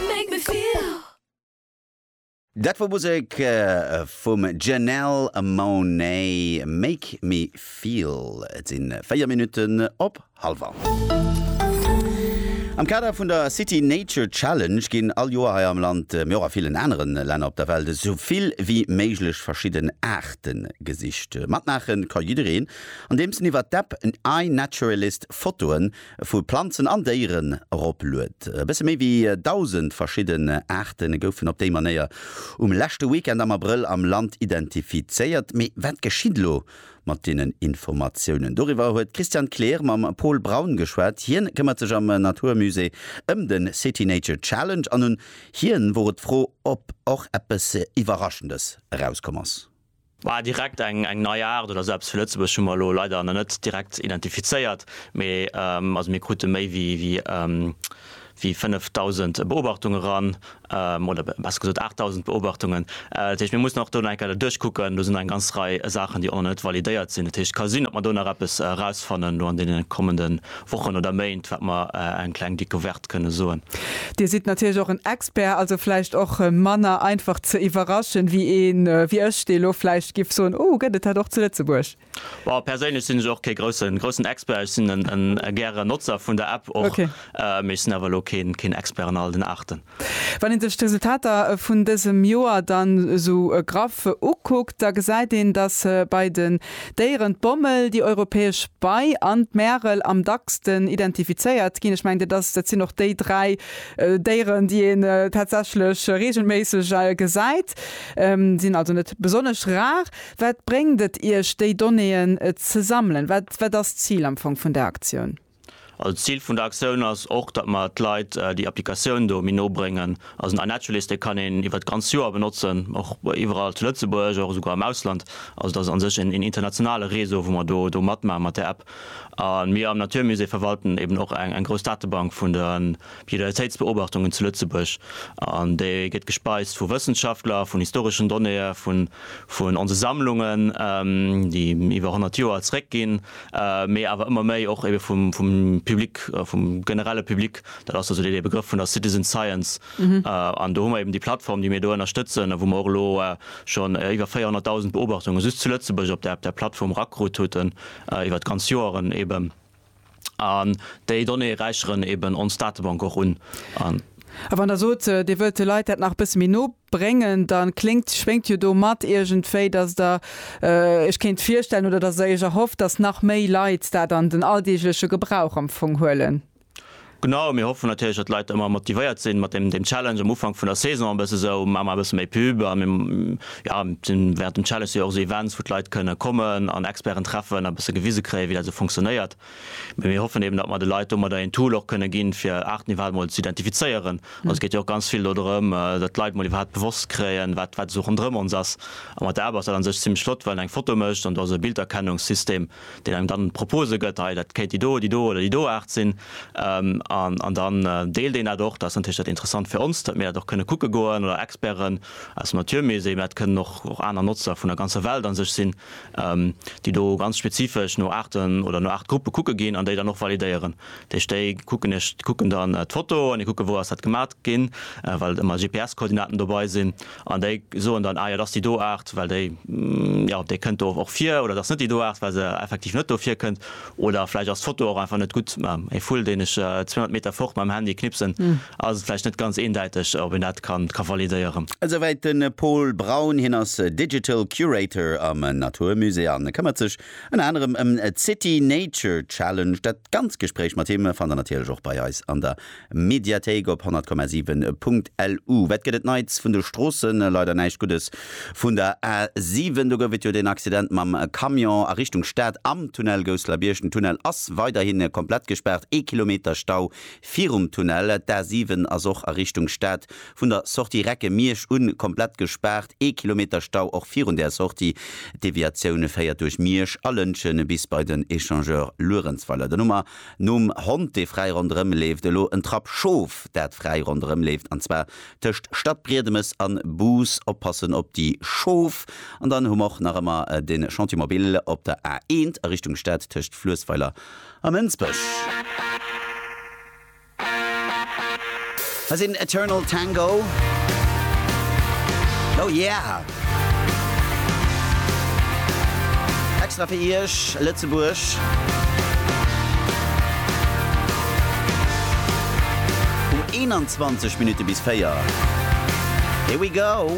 Make me feel. Dat wor Musek vum Janelle Monáe, Make me feel. Et sinn 4 Minutten op halwer. Am Kader vun der City Nature Challenge ginn all Joer hei am Land, mee och a villen aneren Länner op der Welt, esou vill wéi méiglech verschidden Aarten gesicht. Matmaachen ka jiddereen, andeems en iwwert d'App iNaturalist Fotoen vu Planzen an Déieren eropluet. E bësse méi wéi 1.000 verschidden Aarte goufen op déi Manéier um leschte Weekend am Abrëll am Land identifizéiert. Mee wat geschitt elo mat deenen Informatiounen? Doriwwer huet d'Christiane Kleer mam Paul Braun geschwat. Hien këmmert sech am Naturmusée ëm de City Nature Challenge an un hien wor et d'Fro, ob och eppes Iwwerraschendes erauskomm ass. Mä direkt eng nei Aart oder esou eppes fir Lëtzebuerg hu mer elo leider nach net direkt identifizéiert. Mee also mir krute méi wéi 5.000 Beobachtunge ran, oder besser gesot 8.000 Beobachtungen. Dat heescht, mir mussen och do nach eng Kéier dat duerchkucken. Do sinn nach eng ganz Rei Saachen, déi och nach net validéiert sinn. Dat heescht, et ka sinn, datt mer do nach eppes erausfannen elo an deene kommende Wochen oder Méint, wat mer eng kleng Decouverte kënne soen. Dir sidd natierlech och en Expert, also vläicht och manner einfach ze iwwerraschen, wéi ee wéi ech, dee lo vläicht giff soen, Oh, gëtt et dat och zu Lëtzebuerg? Well perséinlech sinn ech och kee groussen, groussen Expert. Ech sinn e gäre Notzer vun der App och, mee ech sinn awer lo keen, keen Expert an all den Aarten. Wann een sech d'Resultater vun dësem Joer dann esou graff ukuckt, da gesäit een, datt bei den Déieren d'Bommel, déi Europäesch Bei an d'Märel am dacksten identifizéiert ginn. Ech mengen, dat ass, dat sinn och déi dräi Déieren, déi een tatsächlech reegelméisseg gesäit, sinn also net besonnesch rar. Wat bréngt et Iech, déi Donnéeën ze sammelen? Wat, wat ass d'Zil am Fong vun där Aktioun? Also Zil vun der Aktioun ass och, datt mer d'Leit déi Applikatioun do méi no bréngen. Also den iNaturalist, dee kann een iwwert d'ganz Joer benotzen, och iwwerall zu Lëtzebuerg, och esouguer am Ausland. Also dat ass a sech een internationale Réseau, wou mer do matmaachen mat där App. A mir am Naturmusée verwalten eeben och eng grouss Datebank vun de Biodiversitéitsbeobachtungen zu Lëtzebuerg. An déi gëtt gespeist vu Wëssenschaftler, vun historeschen Donnéeë vun onse Sammlungen, déi iwwer 100 Joer zeréckginn. mee awer ëmmer méi och ebe vum Public, vum generelle Public, dat ass also dee Begrëff vun der Citizen Science. An do hu mer eben déi Plattform, déi mir do ënnerstëtzen a wou mer och elo schonn iwwer 400.000 Beobachtunge just zu Lëtzebuerg op där Plattform erakrut huten, iwwer d'ganz Joeren eben. An déi Donnéeë räicheren eben ons Datebank och un. A wann Der sot, Dir wëllt de Leit dat nach e bësse méi no bréngen, da kléngt, schwéngt jo do mat iergendwéi, dass Der Iech kéint virstellen oder dass Der Iech erhofft, dass nach méi Leit dat an den alldeegleche Gebrauch am Fong huelen. Genau, mir hoffen natierlech, dass d'Leit ëmmer motivéiert sinn, mat deem deem Challenge am Ufank vun der Saison e bësse sou, Maache mer e bësse méi Pub. A mir, jo, sinn wärend dem Challenge si jo och esou Events, wou d'Leit kënne kommen an Experten treffen a e bësse gewise kréien, wéi dat esou funktionéiert. Mee mir hoffen eben, datt mer de Leit domadder een Tool och kënne ginn, fir Aarten iwwerhaapt emol ze identifizéieren. Also et geet jo och ganz vill dodrëm, datt d'Leit emol iwwerhaapt bewosst kréien, wat, wat esou ronderëm ons ass. A mat der App ass dat an sech zimmlech flott, well en eng Foto mécht an do ass e Bilderkennungssystem, deen engem dann Propose gëtt, hei dat kéint déi do, déi do oder déi do Aart sinn. An dann deelt een dat och. Dat ass natierlech dat Interessant fir ons, datt mir dat och kënne kucke goen oder Experten aus dem Natur Musée, mä dat kënnen och aner Notzer vun der ganzer Welt an sech sinn, déi do ganz spezifesch no Aarten oder no Aartgruppe kucke ginn an déi dann och validéieren. Dat heescht, déi kucken ech kucken dann d'Foto an déi kucke wou ass dat gemat ginn, well et ëmmer GPS-Koordinaten dobei sinn an déi soen dann, ah jo, dat ass déi do Aart, well déi, jo, déi kënnt do och vir oder dat ass net déi do Aart, well se effektiv net do virkënnt. Oder vläicht ass d'Foto och einfach net gutt. E Vull, deen ech 200 Meter fort mam Handy knipsen, ass et vläicht net ganz eendäiteg, ob een dat ka validéieren. Esouwäit de Paul Braun. Hien ass Digital Curator am Natur Musée a këmmert sech ënner anerem ëm d'City Nature Challenge. Dat ganz Gespréich mat him fannt der natierlech och bei eis an der Mediathéik op 100,7 Punkt LU. Wat gëtt et Neits vun de Stroossen? Leider näischt Guddes vun der A 7. Do gouf et jo deen Accident mam Camion a Richtung Stad am Tunnel Gousseler-Bierg. Den Tunnel ass weiderhi komplett gespaart. Ee Kilometer Stau virum Tunnel. D'A 7 ass och a Richtung Stad vun der Sortie Recke-Miersch un komplett gespaart. Ee Kilometer Stau och virun där Sortie. D'Deviatioun féiert duerch Miersch a Lëntgen bis bei den Echangeur Luerenzweiler. Den Nummer Nom Hond, dee fräi ronderëm leeft, elo en Trapp Schof, dat fräi ronderëm leeft, an zwar tëscht Stadbriedemes an Bus. Oppassen op déi Schof. An dann hu mer och nach ëmmer de Chantier Mobil op der A1 a Richtung Stad tëscht Fluessweiler a Mënsbech. Hei sinn Eternal Tango. Oh yeah! Extra fir Iech, Lëtzebuerg. Um 21 Minutte bis 4. Here we go!